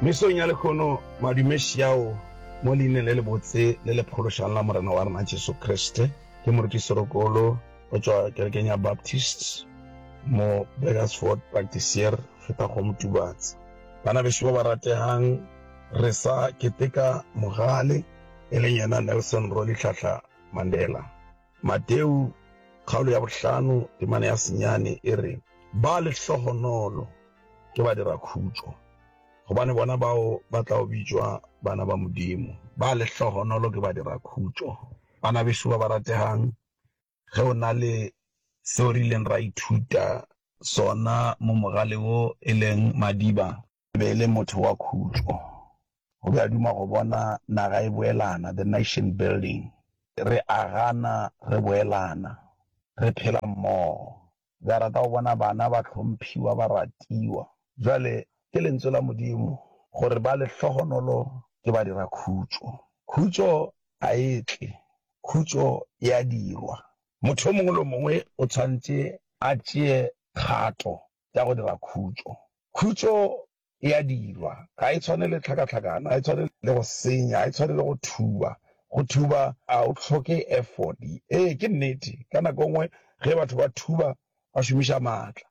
Mesong ya lehono, madume xiao mo leineng le lebotse le le phološang la Morena wa rena Jesu Kriste, ke morutiširokolo go tšwa kerekeng ya Baptist mo Burgersfort, Practisier feta go Motubatse. Bana bešo ba ba rategang, re sa keteka mogale, e leng yena Nelson Rolihlahla Mandela. Mateu, kgaolo ya bohlano, temana ya senyane e re, Ba lehlohonolo ke badirakhutšo, gobane bona bao ba tla o bitšwa bana ba Modimo. Ba lehlohonolo ke badirakhutšo. Bana beso ba ba rategang, ge o na le seo re ileng ra ithuta sona mo mogaleng wo e leng Madiba, e be e le motho wa khutšo. O be a duma go bona naga e boelana, the nation building. Re agana, re boelana, re phela mmogo. O be a rata go bona bana ba hlomphiwa, ba ratiwa. Bjale, ke Lentswe la Modimo gore ba lehlohonolo ke badirakhutšo. Khutšo ga e tle, khutšo e a dirwa. Motho yo mongwe le yo mongwe o tshwanetse a tšee kgato tša go dira khutšo. Khutšo e a dirwa, ga e tshwane le tlhakatlhakano, ga e tshwane le go senya, ga e tshwane le go thuba. Go thuba ga go hloke efodi. Ee, ke nnete, ka nako e nngwe ge batho ba thuba ba šomiša maatla.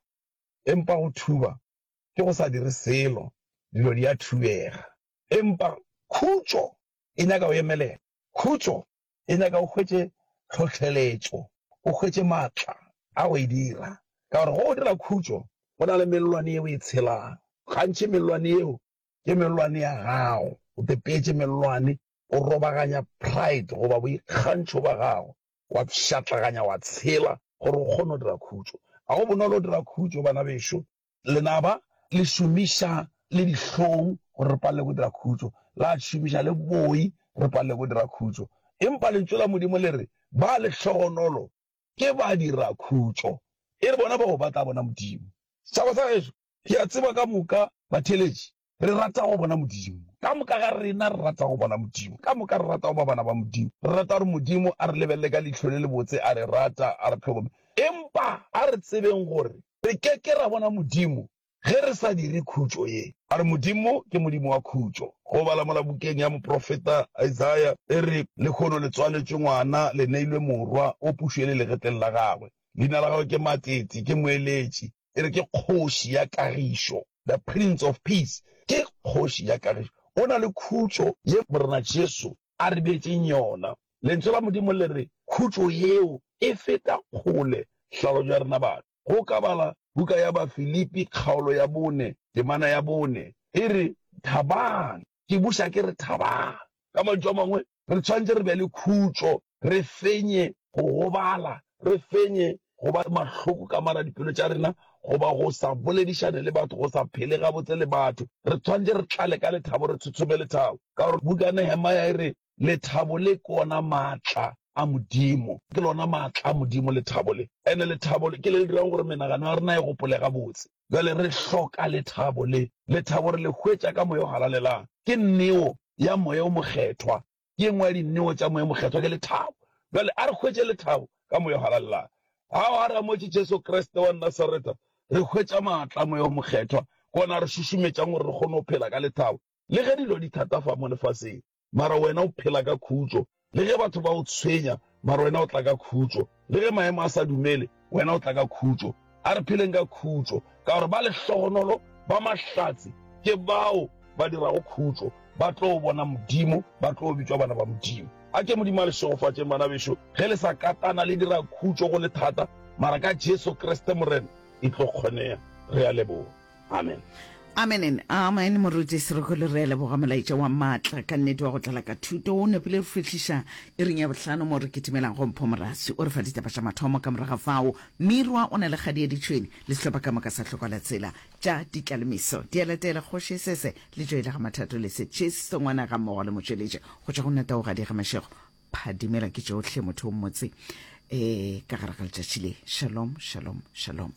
Empa go thuba ke go sa dire selo, dilo di a thubega. Empa khutšo e nyaka go emelela. Khutšo e nyaka o hwetše tlhohleletšo, o hwetše maatla a go e dira. Ka gore go o dira khutšo go na le mellwane ye o e tshelang. Gantši mellwane yeo ke mellwane ya gago. O tepeetše mellwane, o robaganya pride goba boikgantšho bja gago, wa pšhatlaganya, wa tshela gore o kgone go dira khutšo. Ga go bonolo go dira khutšo, bana bešo, Lenaba le šomiša le dihlong gore re palelwe ke go dira khutšo, la šomiša le boi gore re palelwe ke go dira khutšo. Empa Lentšu la Modimo le re, Ba lehlogonolo ke badirakhutšo, e re bona bao ba tla bona Modimo. Setšhaba sa gešo, ke a tseba ka moka batheeletši Re rata go bona Modimo. Ka moka ga rena re rata go bona Modimo. Ka moka re rata go ba bana ba Modimo. Re rata gore Modimo a re lebelele ka leihlo le lebotse, a re rata, a re tlhokomela. Empa a re tsebeng gore re ke ke ra bona Modimo ge re sa dire khutšo ye. A re Modimo ke Modimo wa khutšo. Go bala mola bukeng ya moprofeta Isaiah, e re, Lekhono le tswaletšwe ngwana, le neilwe morwa, o pušo e le legetleng la gagwe. Leina la gagwe ke Matsetse, ke moeletši. E re ke Kgoši ya Kagišo, the Prince of Peace. Ke Kgoši ya Kagišo. O na le khutšo ye Morena Jesu a re beetšeng yona. Lentšu la Modimo le re khutšo yeo e feta kgole hlalošo ya rena batho. Ge o ka bala buka ya Bafilipi kgaolo ya bone, temana ya bone, e re, Thabang. Ke buša ke re, thabang. Ka mantšu a mangwe, re tshwanetse re be le khutšo, re fenye go gobala, re fenye go ba mahloko ka mara dipelo tša rena goba go sa boledišane le batho, go sa phele gabotse le batho. Re tshwanetse re tlale ka lethabo, re tshotshome lethabo, ka gore buka ya Nehemaya e re, Lethabo le ke ona matla a Modimo. Ke lona matla a Modimo lethabo le, and-e lethabo le ke le le dirago gore menagano ya rena e gopole gabotse. Bjale re hloka lethabo le. Lethabo re le hwetša ka Moya o Halalelang. Ke neo ya Moya wo Mokgethwa. Ke engwe ya dineo tša Moya wo Mokgethwa ke lethabo. Bjale a re hwetše lethabo ka Moya wo Halallago. Ha o aramotše Jesu Kriste wa Nasareta, re hwetša maatla a Moya wo Mokgethwa, ke wona a re šušumetšang gore re kgone go phela ka lethabo le ge dilo di thata fa mo lefaseng. Mara wena o phela ka khutšo. Le ge batho ba o tshwenya, mare wena o tla ka khutšo. Le ge maemo a sa dumele, wena o tla ka khutšo. A re pheleng ka khutšo, ka gore ba lehlogonolo ba mahlatse ke bao ba dirago khutšo, ba tlo bona Modimo, ba tlo bitšwa bana ba Modimo. A ke Modimo a le šegofatšeng, bana bešo, ge le sa katana le dira khutšo go le thata, mara ka Jesu Kriste Morena e tlo kgonega. Re a leboga. Amen. Amen and amen moruti Serokolo re a leboga molaetša wa maatla ka nnete wa go tlala ka thuto o nepile re fihliša e reng ya bohlano mo re kitimelang go Mpho Morasi o re fa ditaba tša mathomo ka moraga fao Mirwa o na le kgadi ya ditšhwene le sehlopha ka moka sa hloka la tsela tša ditlalemiso di a latela kgoši sese le tšo ile ga mathato le setšhiso ngwana ga mmogo le motšweletše go tšwa go nna tao ga di ga mashego phadimela ke tšohle motho o mmotse um ka gare ga letšatši le shalom shalom shalom